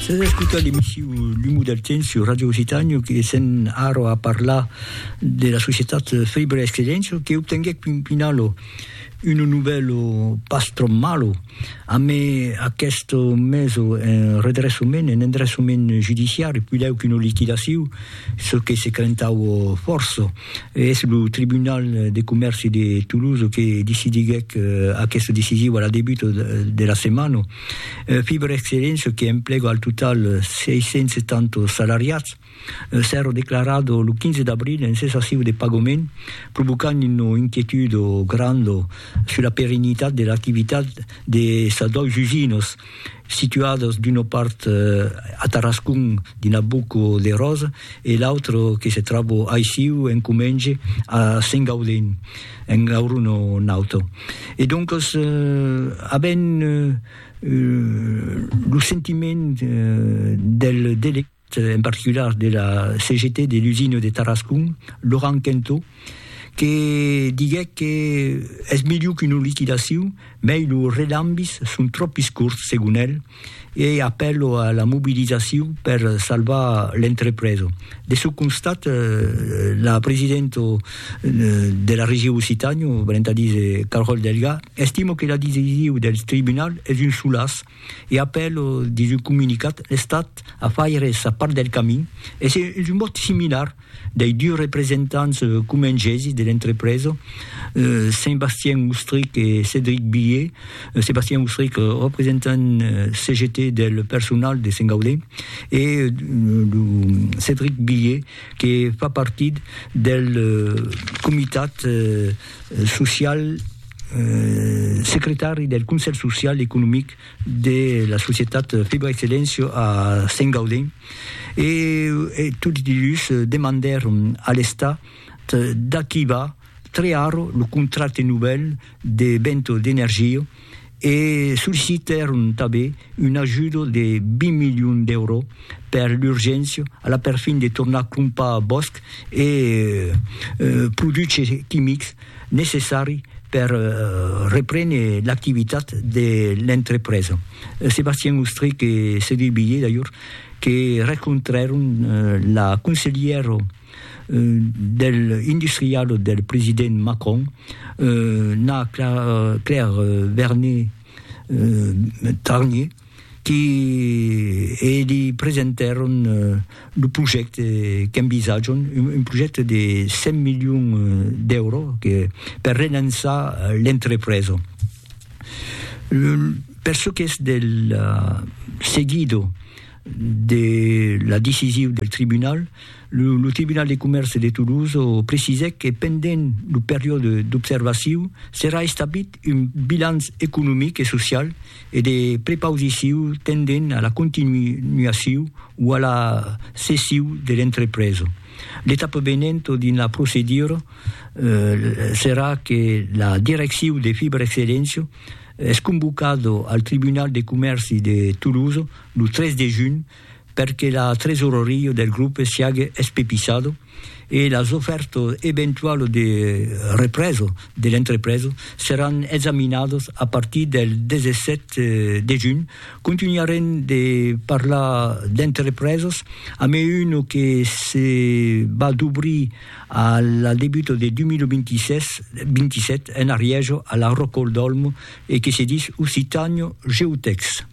S'as escutat l'emissiu L'umu del temps sur Radio Occitània que sèn ara a parlar de la societat Fèibre Excedéncia que obtenguèc pun pinalo un novèlo pas tròp malo amé aqueste meso en redressament, en endressament judiciari, puidèu qu'una liquidaciu, çò que se crentaue fòrça. E es lo Tribunal de Comèrci de Toulouse que decidiguèc aquesta decisiu a la debuta de la setmana. Fiber Excellent, çò que emplega al total 670 salariats, s'èra declarat lo 15 d'abril en cessaciu de pagament, provocant una inquietud granda sus la perennitat de l'activitat de sas dois usinas, situadas d'una part a Tarascon dins la Boca de Rosa e l'autra que se tròba aicí en comenge a Sengaudin. en gaur un o un auto. E doncos, avent lo sentiment del delegèt, en particular de la CGT de l'usina de Tarascon, Laurent Quentot, que diguèc que es miliu qu'una liquidacion, mei los relambis son tròpis corts, segon el, e apèlo a la mobilizacion per salvar l'entrepresa. De çò constat, la presidenta de la Region Occitània, venent a díser Carole Delga, estima que la decision del tribunal es un solaç e apèla dins un comunicat l'Estat a faire sa part del camin e es un mot similar dei dus representants comengesi de l'entrepresa, Sébastien Oustric e Cédric Billet, Sébastien Oustric, representant CGT del personal de Sent Gaudé, e lo Cédric Billet que fa partit del comitat social, secretari del Conselh Social e Economic de la societat Fibra Excellencio a Sengaudin e tots dilhus demandèron a l'Estat d'activar tre arro lo contracte novèl de Bento d'Energia e sollicitèron tanben un ajudo de 20 milions d'èuro per l'urgéncia a la perfin de tornar crompar bòsc e produches quimics necessari per reprene l'activitat de l'entrepresa. Sébastien Ostrich e Cédric Billé, d'ajor, que rencontrèron la conselhièra del industrial del president Macron, la Claire Vernet-Tarnier, que li presentèron lo projècte qu'envisatjon, un projècte de 100 milions d'èuro per relançar l'entrepresa. Per çò qu'es del seguido de la decisiu del tribunal, lo tribunal de comèrce de Toulouse precisèc que pendent lo periòde d'observaciu serà establit un bilanç economic e social, e de prepausiciu tendent a la continuaciu o a la cessiu de l'entrepresa. L'etapa venent dins la procedura serà que la direcciu de Fibra Excelléncia es convocada al Tribunal de Comèrci de Tolosa lo 3 de junh per que la tresoreria del grupe siague espepissada e las ofèrtas eventualas de represa de l'entrepresa seràn examinadas a partir del 17 de junh. Contunharem de parlar d'entrepresas amb una que se va dobrir a la debuta de 2027 en Arièja, a la Rocòl d'Òlmo, e que se dis Occitània Geotècs.